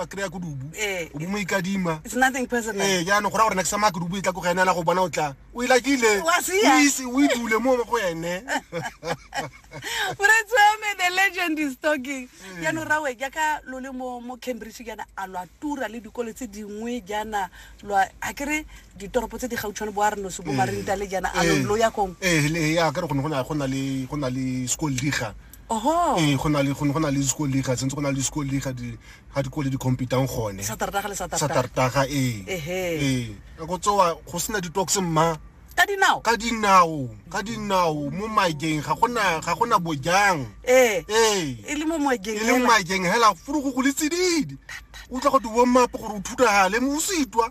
a kry-a ko dubu eh. o mo ikadima ee jaanong go ra gore next sama ke dubu e tla ko ga enela go bona o tla o ilakile o idule mo go ene moretsoame the legend is talking ee. jaanong rawe jaaka lo le mo mo cambridge jaana a lo a tura le dikolo tse dingwe jaana lo a kere ditoropo tse di gautshwane bo a re noso bo ee. marintale jaana a lo ee. ya kong ee a kere go ne go na le school diga Ee, go na le go na le school league ga sentse go na le school league ga dikole di competang gone satartaga ee ee ka go tsoa go sena di-tox mma ka dinao ka dinao ka dinao mo maekeng ga gona ga gona bojang ee ee e le mo maekeng e le mo maekeng hela furugo go le tsididi o tla go di warm up gore o thutagale mo o se itwa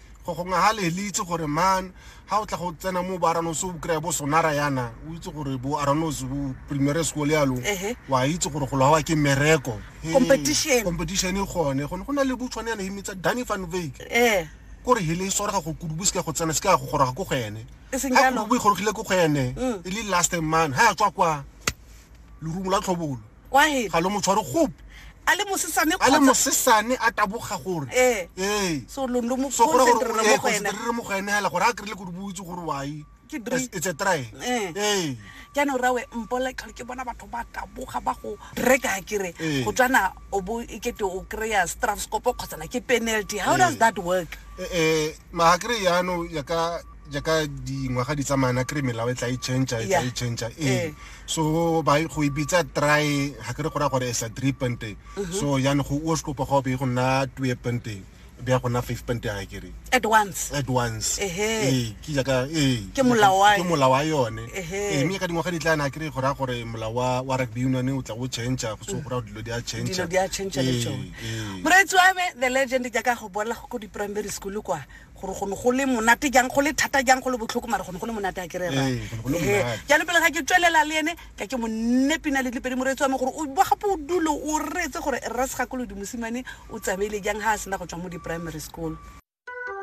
go gongwe ga le le itse gore man ga o tla go tsena mo boaranose o kry-a bo sonara yana o itse gore bo aranose bo primary school yalo wa itse gore go lwawa ke mereko competition e gone gone go na le botshwane yana emetsa danny van vake eh. kore hele e swarega go kudubo se ka go tsena se ka go goroga ko go ene e ga kudubo e gorogile ko go ene mm. e le last man ga ya tswa kwa lerumo la tlhobolo Quiet. ga lo mo tshware gope a le mosesane a le kgotsa- mosesane a taboga gore Eh. ee so lo lo mo so gore gore concentrate mo go ene re mo go ene hela gore a kry-ile gore boitse gore wai Ke dri- It's- it's a try Eh. ee jaanong rawe mpola tlhole ke bona batho ba taboga ba go reka kere Ee. go tswana o bo e kete o kry-a strafscopo kgotsana ke penalty how Ee. does that work Eh, eh, maakere yano ya ka jaaka dingwaga di tsamaya na kry melao e tla e change e tla e change ee so ba go ibitsa try ga kere go ra gore sa three pente mhm. so yana go o skopo go be go nna two pente be go nna five pente ga kere at once at once ee ke jaaka ee ke molao wa ke molao wa yone ee mme ka dingwaga di tla na kry go ra gore molao wa wa rugby union o tla o change go so go ra dilo di a change dilo di a change le tsone moretsi wa me the legend jaaka go bola go ko di primary school kwa gore go ne go le monate jang go le thata jang go le botlhoko mare go ne go le monate a ke re Ee, go ne go le rrae monate. jalo pele ga ke tswelela le ene ka ke monne pina le dipedi moreetsi wa me gore o ba gape o dule o reetse gore rra segakolodi mosimane o tsamaile jang ga a sena go tswa mo di-primary school